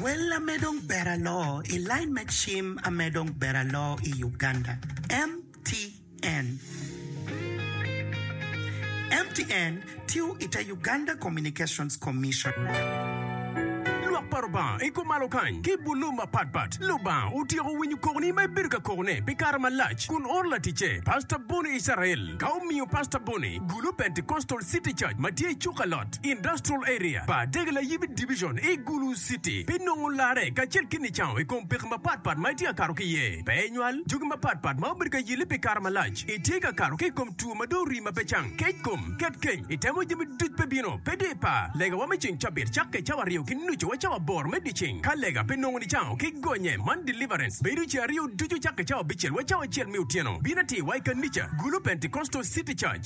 Wel ame dong ber aloo i lain me cim ame dong ber aloo i Uganda, MTN. MTN tiyo i te Uganda Communications Commission. Lwak pa Lubanga i kom malo kany ki bulu mapatpat. Lubanga otyeko winyo kokoni ma ibedo ka kokone pi kare malac kun oro laticce, Pastor Bonnie Israel, ka omiyo Pastor Bonnie gulu Pentecostal City Church ma tye i Cukalot. West Industrial Area pa Degelayibi Division i Gulu City pi nongo larre kacel ki nicango i kom peko mapatpat ma itye ka kato ki iye. Pe inywal jogi mapatpat ma obedo ka yelli pi kare malac. Itye ka kato ki i kom two ma dong orii ma pe cang, kec kom, ket keny, itemo jami duc pe bino, pe di pa. Legawa me ceng cabit cakke cawa aryo ki nucu wa cawa aboro me dyeceng. Ka lega pe nongo nicango ki gonye man deliverance bedo ceng aryo ducu cakke cawa abicel wa cawa acel me otyeno. Bin atir wa i kanica Gulu Pentecostal City Church.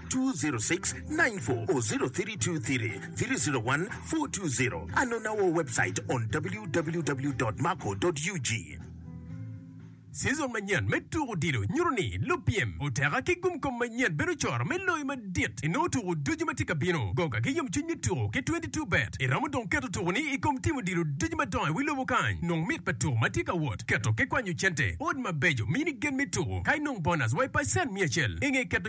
20694 or 0323-301-420 and on our website on www.marco.ug. Season manyen me tuko odilo nyuto ni lupyem oteka ki gumkom manyen bedo coro me loyo madit i nongo tuko ducu ma tye ka bino. Goga ki yomcwiny me tuko ki 22Bet. Iromo dong keto tukoni i kom tim odilo ducu madongo i wi lobo kany. Nong mit pa tuko ma tye ka wot, keto ki kwanyo cente, ot mabeco, mini gen me tuko, ka inong bonus wa i pacen mia acel i nge keto